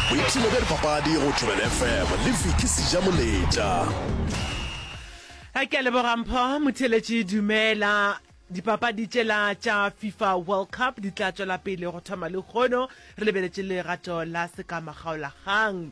boipshino bja dipapadi go Thobela FM le Vicky Sejamoletša. Ke a leboga Mpho Motheletši Dumela. Dipapadi tšela tša FIFA World Cup di tla tšwela pele go thoma lekgono. Re lebeletše legato la sekamagaolagang.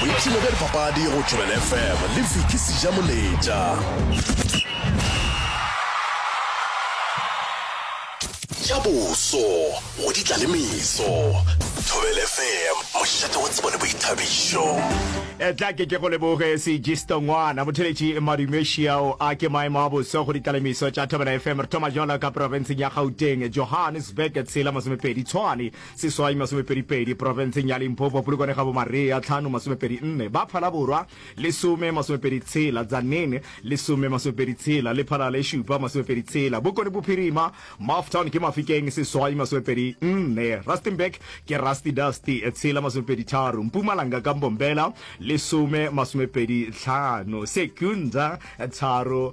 boipshino bja dipapadi go tšwelela fm le fiki seja moletša ja boso go di tla le meso thobele fm mošate wa tsebo le boithabišo etla ke ke go leboge segisto ngwana motheletši madumešiao a ke maemo a boso go ditlalemiso tša thobela fm re thoma jalo ka profenseng ya gauteng johannesburg tshela masomepedi tshwane seswai masomepedipedi, profenseng ya Limpopo, Polokwane ga Bomarea, tlhano masomepedi nne, ba Phala Borwa, lesome masomepedi tshela, Tzaneen, lesome masomepedi tshela, le Phala le šupa masomepedi tshela, Bokone Bophirima, Maftown ke Mafikeng, seswai masomepedi nne, Rustenburg ke Rusty Dusty, tshela masomepedi tharo, Mpumalanga ka Mbombela, lesome masomepedi tlhano, Secunda, tharo,